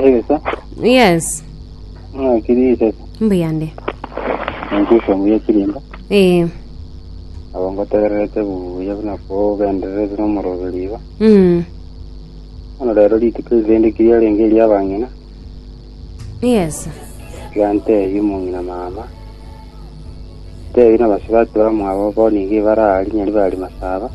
Egesa, Yes. ng'a kiri esesa, Mbuyande. ninki okomuya chirinda, Eh. nabo ngotegererete buya buna kogendererete nomoroberi iga. Mm. Bono rero rituko erinde kiriarenge eriabang'ina, Yeso. Gantebia omong'ina mama, Tebia nabasibake bamwabo bo nigo ebare aa rinya ribaga rimasaba,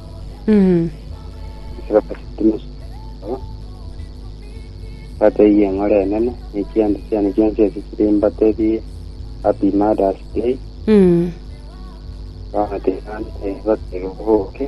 batebie eng'ora enene, ne chianda chiane chionsi ase chire mbatebie, Happy Mother's Day. Gantebia, Boke.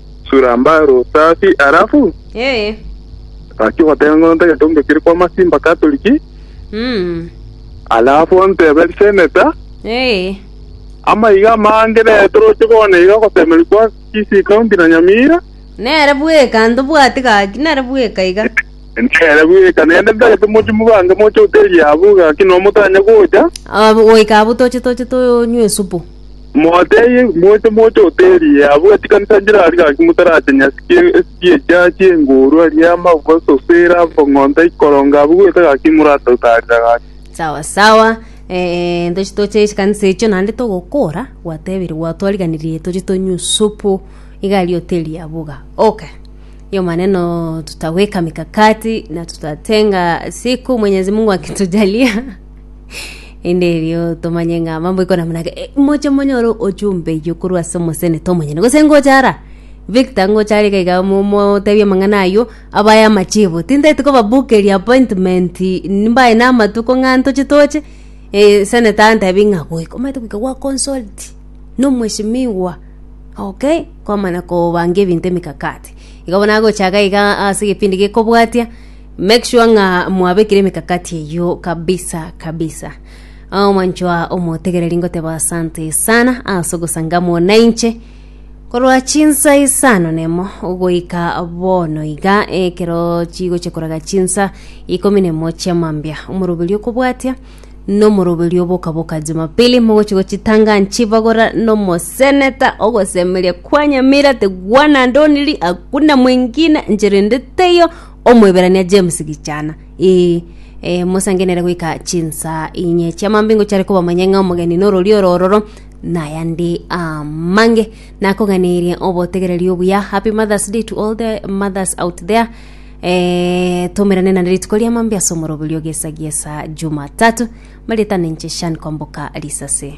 Sura mbare osafi alafu Ee. Gaki ogoteba ng'a onta egento onde kere kwama simba Katoliki. Mm. Alafu ontebe riseneta. Ee. Amaiga amange nere toroche bono iga ogotemerwa kwa Kisii County na Nyamira. Nere bweka ntobwati gaki nere bweka iga. Nere bweka nende ntagete moche mobange moche hoteli yabo gaki nomotanya gocha. Ab- goika abwo toche toche tonywe esupu. Moteebie, moche moche oteerie, abwo chikanisa nchire aria gaki motarache nyasi chi'echiacha chi'engoorwa, riama, gososera, bong'onta, ikoronga, abwo goeta gaki moratotaarera gaki. sawa sawa eh, ntoche toche chikanisa echio naende togokora gwatebire gwatwariganirie toche tonywe supu iga aria oteerie abwo iga okay hiyo maneno tutaweka mikakati na tutatenga siku mwenyezi mungu akitujalia inde erio tomanye ng'a mambo ikona munake Eh, moche monyoro ochumbe iyo korwa ase omosene tomonyene gose ngochara victor ngochara iga iga mo- motebie amang'ana ayio aba aya amachibo tintagete kobabukeria appointment nimbaye na amatuko ng'a ntoche toche eh, seneta antebi ng'a goika omanyete goika gwa consult na omweshimiwa okay kwamanya kobanga ebinto emikakati igo bono agocha iga iga ase egepindi gekobwatia. Make sure ng'a mwabekire emekakati eyio kabisa kabisa. Ah, mwanchoa omotegereri ngoteba asante sana ase ogosangamwa na inche korwa chinsa isano nemo goika bono iga ekero chigochia koraga chinsa ikomi nemo chia mambia omoroberi okobwatia nomoroberi obokaboka jumapili mogochia gochitanga nchibagora nomoseneta ogosemeria kwa nyamira tigwana ndoniri hakuna mwingine nchirende teiyo Omoeberania James Gichana, Ee, ee, mosangenere goika chinsa inye chiamambe ingo chiare kobamanya ng'a omogeni n'ororio orororo nayande amange nakoganerie obotegereri obuya happy mothers day to all the mothers out there eh, tomerane nande rituko riamambe ase omoroberio gesa gesa jumatatu maritana inche shan kwamboka risase